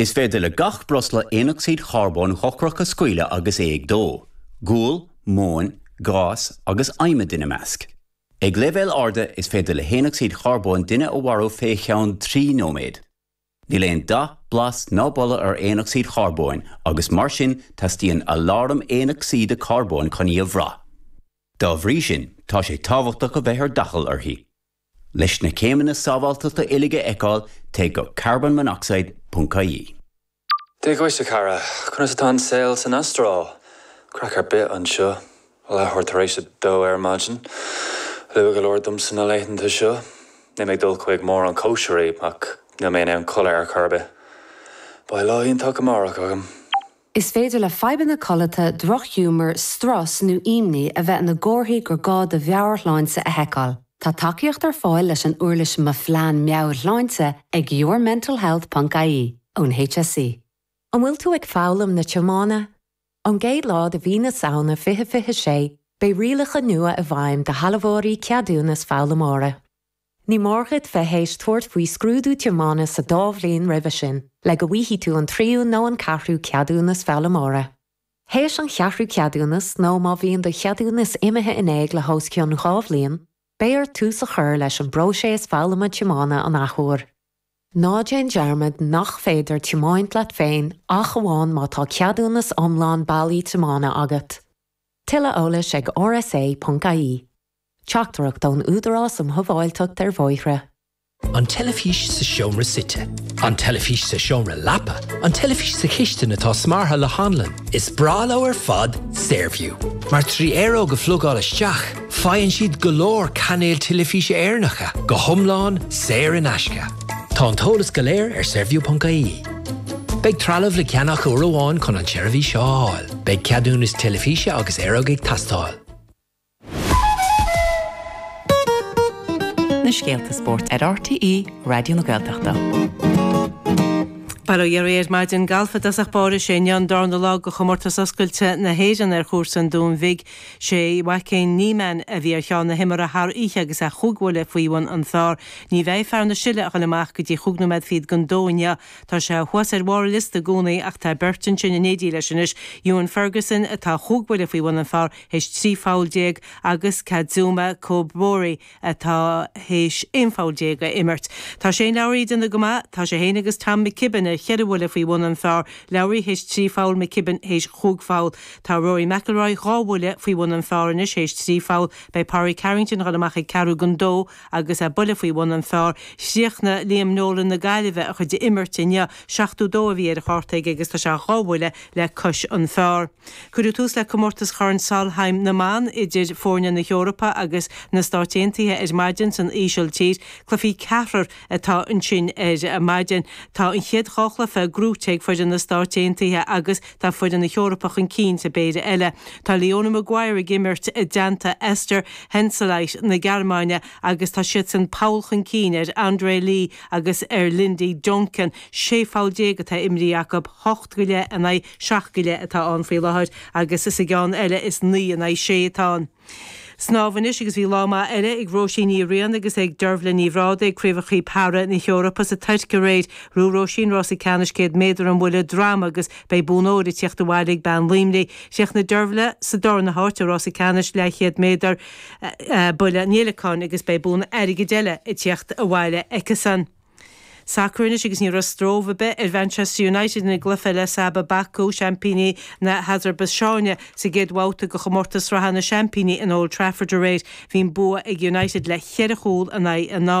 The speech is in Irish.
Is féidir le gach breosla aonocsaíd charbóin dhochrach a scaoileadh agus é ag dó, gual, móin, gás agus adhmad ina measc. Ag leibhéil arda, is féidir le haonocsaíd charbóin duine a mharú fé cheann trí nóiméad. Níl aon dath, blas ná boladh ar aonocsaíd charbóin agus mar sin teastaíonn aláram aonocsaíde carbóin chun í a bhrath. Dá bhrí sin, tá sé tábhachtach a bheith ar d'fhaichill uirthi. Leis na céimeanna sábháilteachta uilig a fheiceáil, téigh go carbonmonoxide ponc ie. Dia dhuit, a chara. Conas atá an saol san Astráil? Craic ar bith anseo. Leathuair tar éis a dó ar maidin. Luath go leor domsa na laethanta seo. Níl mé ag dul chuig mórán cóisirí, ach níl mé in ann codladh ar chor ar bith. Beidh lá iontach amárach agam. Is féidir le fadhbanna codlata, drochghiúmar, strus nó imní a bheith ina gcomharthaí gur gá do mheabhairshláinte a sheiceáil. Tá tacaíocht ar fáil leis an uirlis Mo Phlean Meabhairshláinte ag yourmentalhealth ponc ie ón HSE. An bhfuil tú ag foghlaim na tiomána? Ón gcéad lá de mhí na Samhna 2026, beidh rialacha nua i bhfeidhm do shealbhóirí ceadúnas foghlaimeora. Ní mór dhuit bheith théis tabhairt faoi scrúdú tiomána sa dá bhliain roimhe sin le go bhfaighidh tú an tríú nó an ceathrú ceadúnas foghlaimeora. Théis an cheathrú ceadúnas, nó má bhíonn do cheadúnas imithe in éag le hos cionn dhá bhliain, beidh ort tús a chur leis an bpróiseas foghlama tiomána an athuair. Ná déan dearmad nach féidir tiomáint leat féin ach amháin má tá ceadúnas iomlán bailí tiomána agat. Tuilleadh eolais ag rsa.ie. Teachtaireacht ón Údarás um Shábháilteacht ar Bhóithre. An teilifís sa seomra suite. An teilifís sa seomra leapa. An teilifís sa chistin atá smeartha le hanlann. Is breá leo ar fad Saorview, mar trí aeróg a phlugáil isteach, faigheann siad go leor cainéil teilifíse Éireannacha, go hiomlán saor in aisce. Tá an t-eolas go léir ar Saorview.ie. Beidh trealamh le ceannach uair amháin chun an tseirbhís a fháil. Beidh ceadúnas teilifíse agus aeróg ag teastáil. Na scéalta spóirt ar RTÉ Raidió na Gaeltachta. Bail ó Dhia oraibh ar maidin. Galf i dtosach báire. 'Sé inniu an darna lá de Chomórtas Oscailte na hÉireann ar chúrsa an Dúin Bhig. 'Sé Joaquin Niemann a bhí ar cheann na himeartha thar oíche agus é chúig bhuille faoi bhun an phar. Ní bheidh fear na Sile ag goil amach go dtí chúig nóiméad fichead don dó inniu. Tá sé thuas ar bharr liosta i gcónaí ach tá beirt ansin in éindí leis anois, Ewen Ferguson, atá chúig bhuille faoi bhun an phar, théis 13 pholl agus Kazuma Kobori atá théis 11 pholl a imirt. Tá Shane Lowry ag déanamh go maith, tá sé féin agus Tom McKibben ar cheithre bhuille faoi bhun an phár, Lowry théis 13 pholl, McKibben théis 15 pholl. Tá Rory McIlroy dhá bhuille faoi bhun an phár anois théis 13 pholl, beidh Pádraig Harrington ag dul amach ag ceathrú don dó agus é buille faoi bhun an phár. Chríochnaigh Liam Nolan na Gaillimhe a chuid imirt inniu, 72 a bhí ar a chárta aige agus tá sé dhá bhuille le cois an pháir. Cuireadh tús le comórtas Chorn Solheim na mBan idir foirne na hEorpa agus na Stáit Aontaithe ar maidin san Ísiltír. Cluichí ceathrar atá ansin ar maidin. Tá an chéad dhá chluiche gnóite ag foireann na Stáit Aontaithe agus tá foireann na hEorpa chun cinn sa bpéire eile. Tá Leona Maguire ag imirt i dteannta Esther Henseleit na Gearmáine agus tá siadsan poll chun cinn ar Andrea Lee agus ar Lindy Duncan. 16 pholl atá imrithe acu, hocht go leith in aghaidh seacht go leith atá ann faoi láthair agus sa gceann eile is naoi in aghaidh sé atá ann. Snámh anois agus bhí lá maith eile ag Róisín Ní Riain agus ag Dearbhaile Ní Bhrádaigh ag Craobhacha Para na hEorpa sa Tuirc aréir. Ghnóthaigh Róisín rása ceannais 100 méadar an bhuille droma agus beidh bonn óir ag tíocht abhaile ag bean Luimnigh. Chríochnaigh Dearbhaile sa darna háit i rása ceannais leathchéad méadar buille an fhéileacáin agus beidh bonn airgid eile ag tíocht abhaile aici-san. Sacar anois agus ní raibh stróbh ar bith ar Mhanchester United ina gcluiche le Sabah Baku, seaimpíní na hAsarbaiseáine, sa gcéad bhabhta de chomórtas sraithe na seaimpíní in Old Trafford aréir. Bhí an bua ag United le ceithre chúl in aghaidh a.